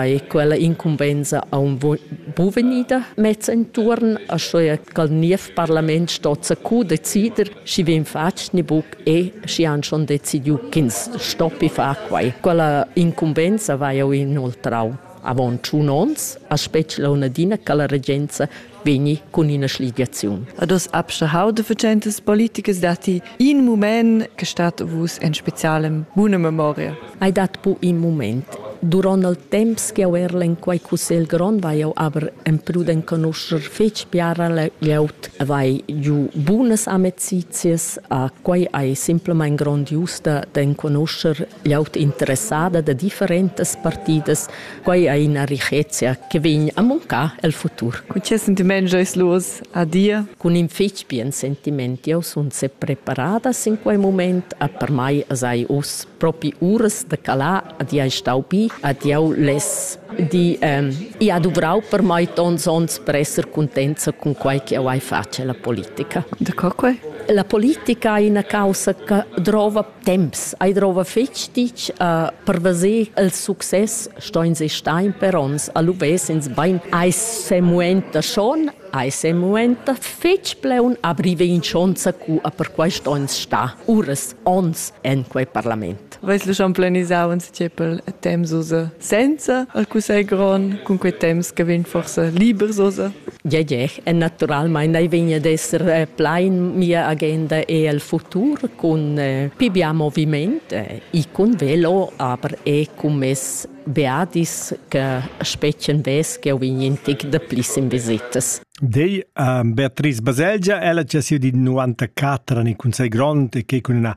Ei quella incumbensa aunc buca vegnida messa entuorn, aschia ch'al niev parlament sto zacu decider, schi vegn fatg ni buc e schi han schon decidiu ch'ins stoppi far quei. Quella incumbensa vai jeu inoltrau. Avon tschun onns ha spetg launadina che la regenza vegni cun ina schligiaziun. Ad oss abstehau de vecentas politicas datti in mument che stat vus en specialem buna memoria. Ei dat bu in mument. Duront il temps che jeu erl en quei cussegl grond vai jeu aber emprud enconuscher fetg biara glieud e vai giu bunas amecizias. A quei ei semplamein grondiusta d'enconuscher gl'auta interessada da differentas partidas. Quai è ina richezia che vegn a mancar el futur. Cun che sentiment giois los a dir? Cun in fetg bien sentiment. Jau sun sepreparada sin quai mument, a per mai sai uss propi uras da calar, ad jau stau bi, ad jau less di, ähm, ich ha duvrau per mai tons onns per esser cuntenza cun quai che jau hai fatg la politica. Da co quai? La politica è una causa che drova Temps ei drova fetg ditg a perveser il success stoins e stein per ons a luvess ins bein ei semuenta schon ei semuenta fetg pleun a brivein schonza cu a per quei stoins sta uras ons en quei parlament. Veis lu schon planisau in tschepel temps ussa? senza al cussegl grond, cun quei temps che vegn forsa libers osa? Ja, ja, e naturalmein ei vegn ad esser eh, plein mia agenda e el futur cun eh, pibia moviment eh, e cun velo, aber e cun mes beadis che spetschen ves che vegn in tic de plis in visitas. Dei uh, Beatrice Baselgia, ella c'è sido di 94 anni con sei grond e che con una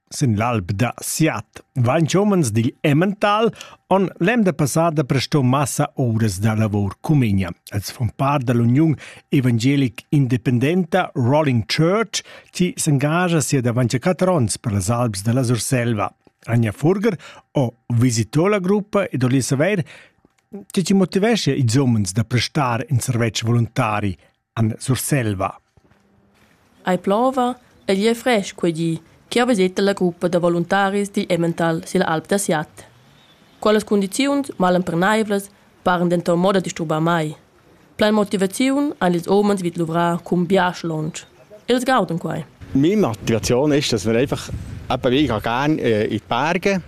Sin l'alp da Siat vain homens digl Emmental on l'emda passada presto massa ouras da lavor cumegna. Els fon part da l'uniun evangelic independenta Rolling Church, chi s'engagia sia davanti a quatter ons per las Alps da la Surselva. Anja Furger o visitò la gruppa ed oli saver che ci motivesce i zommens da prestar in servetsch voluntari en Surselva. Ei plova, egl ei frestg quei di che ha viseta la gruppa da voluntaris digl Emmental silla alp da Siat. Quellas cundiziuns malemperneivlas paran denton mo da disturbar mai. Plein motivaziun han ils umens vid luvrar cun biasch lunsch. Els gauden quei. Meine Motivation ist, dass wir einfach eben, ich gehe gerne äh, in die Berge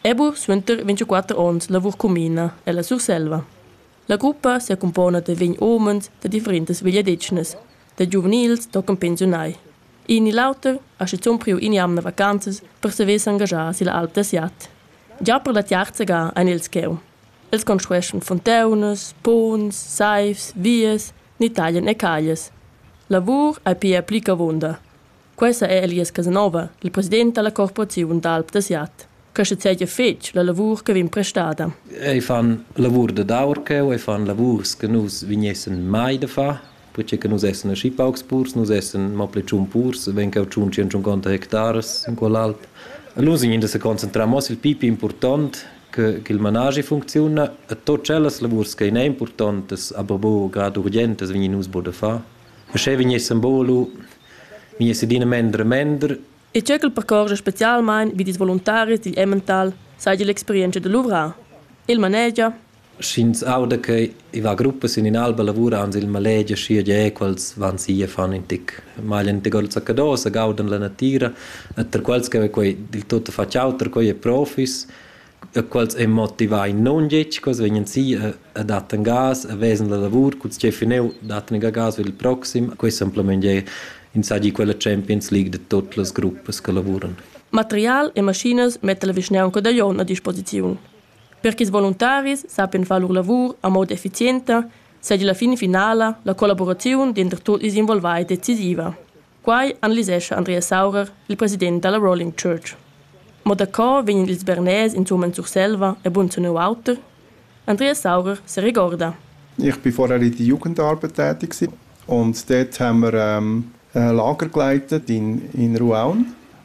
Ebu suenter 24 onns lavur cumina ella Surselva. La gruppa secumpona da vegn homens da differentas vegliadetgnas, da giuvenils tochen pensiunai. In ni l'auter ha schizun priu in'jamna vacanzas per saver s'engaschar silla alp da Siat. Già per la tiarza ga ein els cheu. Els construeschan fontaunas, ponns, saivs, vias ni taglian e caglias. Lavur ei pia pli che avunda. Questa è Elias Casanova, il president dalla Corporaziun d'alp da Siat. Questa sedia fetg la lavur che vegn prestada. Ei fan lavur da daur cheu, ei fan lavurs che nus vignessen mai da far, perché che nus essen aschi paucs purs, nus essen mo pli tschun purs, wenn cheu tschun tschient cinquanta hectares in quell'alt. E nus vegnin da se concentrar mo sil pipi important che, che il managi funcziuna e tot cellas lavurs che in è importantes, aber bo grad urgentes vegnin nus bo da far. Uschè vegnessan volu vegniss adina mender e mender. E tge ch'el percorgia spezialmain vid ils voluntaris digl Emmental saja l'experientscha da luvrar. Il manegia Sch'ins auda che i va gruppas sin in'alba lavura ans il malegia schia ge quels van si e fan in tic maglia in gol zaccadosa gaudan la natira e per quels che quei dil tutto facciauter quei è profis e quels ein motivai nundetg, quels vegnan si e, e dattan gas e vesan la lavur cun tgei fineu dattan ga gas il proxim. Questo semplamain è insagli quella Champions League de tutte le gruppas che lavuran. Material e maschinas metta la vischnaunca da Jon a disposiziun. Per che ils voluntaris sappian far lur lavur a moda efficienta, seigi la fin finala la collaboraziun denter tutti ils involvai decisiva. Quai analisescha Andreas Saurer, il president da la Rolling Church. Mo daco vegnan ils Bernais insumma en Surselva e bunzunau auter? Andreas Saurer se regorda. Ich bin vorher in der Jugendarbeit tätig und dort haben wir ähm, ein Lager geleitet in, in Ruaun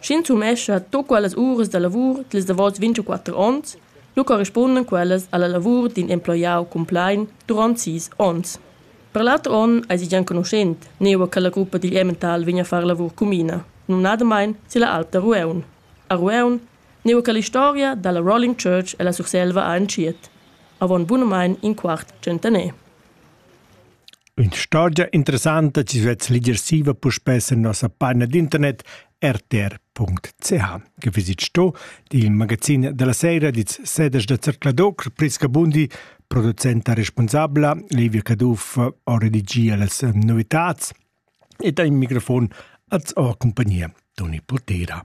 Sch'ins sumescha tut quellas uras da lavur dils davos vintuquatter onns, lu corrispunden quellas alla lavur d'in emploiau cumplein duront sis onns. Per l'auter onn eisi gia enconuschent nua che la gruppa digl Emmental vegn a far lavur cumina, numnadamein silla Alp da Rueun. A Rueun, nua che l'historia dalla Rolling Church e la Surselva ha entschiet, avon bunamein in quart tschentaner. Ün'istorgia interessanta chi svess ligersiva puspè sur nossa paina d'internet rtr.ch. Que vaisit sto, di il magazin da la saira dits sedes da Zercladoc, Priska Bundi, producenta respunsabla, Livia Caduff ho redigia las novitats ed ha in microfon als ho compagnia Toni Putera.